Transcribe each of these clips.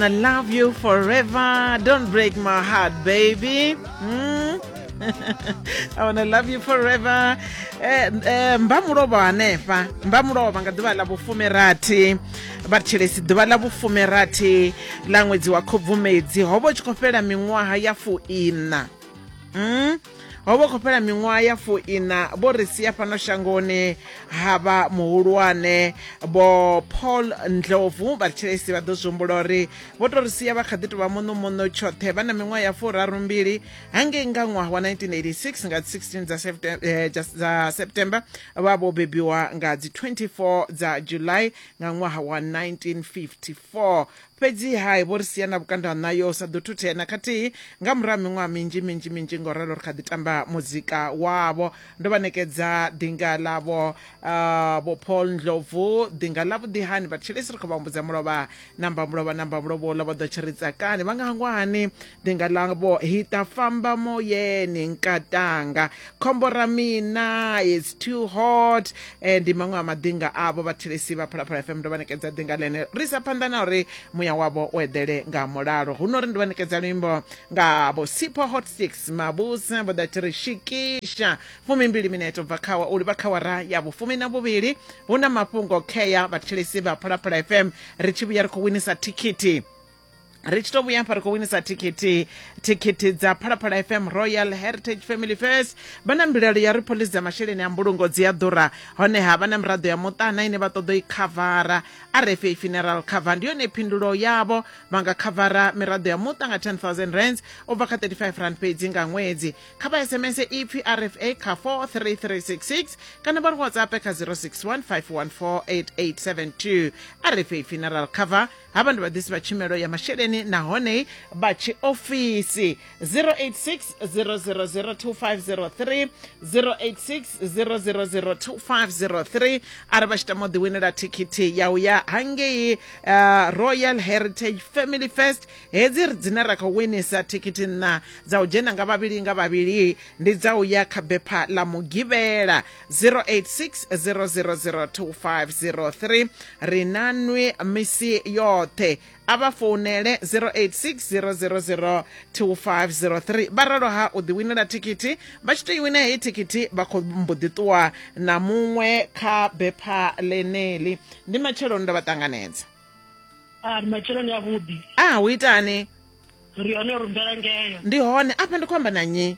I love you forever. Don't break my heart, baby. Mm. I wanna love you forever. Eh, eh, mba mulovha hanefha mba mulovha nga ḓuvha ḽa vhufumirathi vhathelesi ḓuvha ḽa vhufumirathi ḽa ṅwedzi wa khobvumedzi ho vha u tshi khou fhela miṅwaha ya fuiṋa mm? ho vha khou fhela miṅwaha ya fuina vho ri sia fhano shangoni ha vha muhulwane vho paul ndlovu vha thilesi vha ḓo zwi humbula uri vho to ri sia vha kha ḓi tovha muṋumuṋu tshoṱhe vha na miṅwaha ya furaru mbili hangei nga ṅwaha wa 1986 nga 16 dza september, eh, dza september vha vho bebiwa nga dzi 24 dza july nga ṅwaha wa 1954 Fhedzi-ha vho ri sia na vhukando ha ṋayo hu sa ḓo thuthea na khathihi. Nga murahu ha miṅwaha minzhi minzhi minzhi nga u ralo ri kha ḓi tamba muzika wavho. Ndo vha ṋekedza ḓinga ḽavho Vho Paul Ndlovu, ḓinga ḽavhuḓi hani vhathetshelesi ri khou vha humbudza mulovha. Na mbamulovha na mbamulovha uḽa vha ḓo tshi ri tsakani vha nga hangwa hani ni nga lavo hi ta famba moyeni nkatanga khombo ra mina is too hot and maṅwe a madinga avho vhathelesi vha phalaphala fm ndo vha ṋekedza dinga ḽene ri sa phanḓa na uri muya wavho u eḓele nga mulalo huno ri ndi vha ṋekedza luimbo nga vho sipho hot six mabusa vho ḓa thi ri shikisha fumimbili mineto bva khawa u livha khawara ya vhufumi na vhuvhili hu na mafhungo khea vhathelesi vha phalaphala fm ri tshi vhuya ri khou winisa thikhithi ri tshi to vhuya hafha ri khou winisa thikhithi thikhithi dza phalaphala fm royal heritage family first vha na mbilaelo ya ri pholisi dza masheleni a mbulungo dzi a ḓura honeha vha na miraḓo ya muṱana ine vha ṱoḓo i khavara rfa funeral cover ndi yone phindulo yavho vha nga khavara miraḓo ya muṱa nga 10000 rands u bva kha 35 rand fhedzi nga ṅwedzi kha vha sms ipfi rfa kha 43366 kana vha ri whatsapp kha 061 514 8872 rfa funeral cover havha ndi vhaḓisi vha tshumelo ya masheleni nahone vha tshiofisi 086 0002503 086 0002503 arali vha tshi tama u ḓiwinela thikhithi ya u ya hangei uh, royal heritage family fest hedzi dzine ra khou winisa thikhithi nṋa dza u dzhena nga vhavhili nga vhavhili ndi dza u ya kha bepha ḽa mugivhela 0860002503 ri na nwi misi yoṱhe a vha founele 0860002503 vha ralo ha u ḓiwinela thikhithi vha tshi tou i wina heyi thikhithi vha khou mbo ḓi ṱuwa na muṅwe kha bepha ḽeneli ndi matsheloni ndo vha ṱanganedza a ah, matsheloni avhuḓi a ah, hu itani ri hone ri mbelangeyo ndi hone afha ndi khou amba na nyi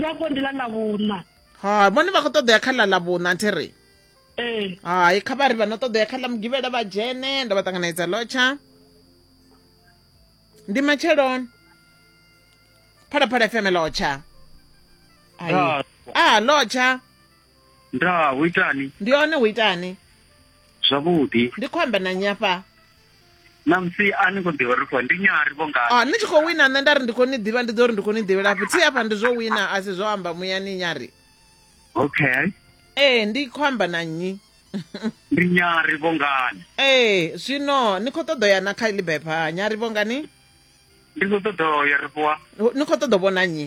sako ndi ḽa ḽa vhuṋa ha vhone vha khou ṱoḓea kha ḽa ḽa vhuṋa thi ri ee hai kha vha ri vha no ṱoḓea kha ḽa mugivhela vha dzhene ndo vha ṱanganedza lotsha ndi matsheloni phalaphala fm lotsha a lotsha ndaa hu itani ndi hone hu itani zwavhuḓi ndi khou amba na nyafha namusi a ni khou ḓivha ri khou ndi nyari vho ngani oh, ni tshi khou wina nṋe nda ri ndi khou ni ḓivha ndi ḓo ri ndi khou ni ḓivhela fhi thi hafha ndi zwo wina a si zwo amba muyani nyari okay ee ndi khou amba na nnyi ndi nyari vho ngani ee zwino ni khou ṱoḓo ya na kha iḽi bepha nyari vho ngani ndi khou ṱoḓo ya ri fhiwa ni khou ṱoḓo vhona nnyi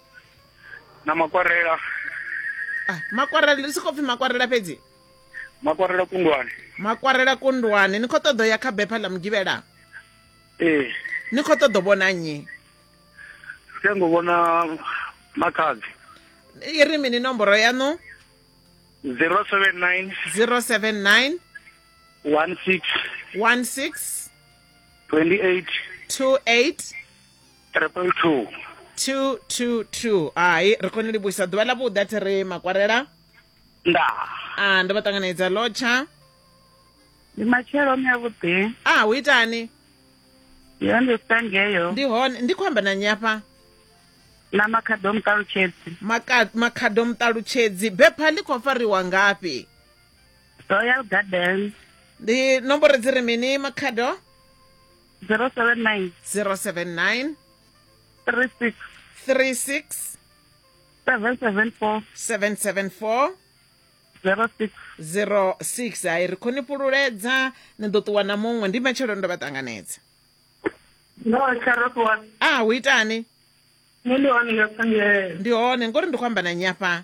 na makwarela Ah, makwarela ndi sokou pfi makwarela fhedzi makwarela kundwani makwarela kundwani ni khou ṱoḓa u ya kha bepha ḽa mugivhela ee ni khou ṱoḓa u vhona nnyi tea ngo vhona makhadzi i ri mini nomboro yaṋu 079 079 16 16 28 28 triple two two two two hai ri khou ni livhuisa ḓuvha ḽa vhuḓa thi ri makwarela nda a ndo vha ṱanganedza lotsha ndi matshelo mi avhuḓi a hu itani yo ndi sangeyo ndi hone ndi khou amba na nyafha na makhado muṱalutshedzi makhado muṱalutshedzi bepha ḽi khou fariwa ngafhi royal garden ndi nomboro dzi ri mini makhado zero seven nine 079 three six 36 seven seven four 774 zero six 06 hai ri khou ni fhululedza ni ḓo ṱuwa na muṅwe ndi matshelo ndo vha ṱanganedza ndo tsha ro ṱuwa a hu itani nṋe ndi hone nga tsangele ndi hone ngori ndi khou amba na nnyi afha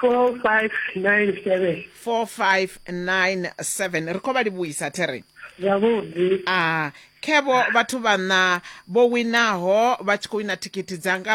4597 4597 ri khou vha livhuisa theren zwavhuḓi a khevo vhathu vhaṋa vho winaho vha tshi khou wina thikhithi dzanga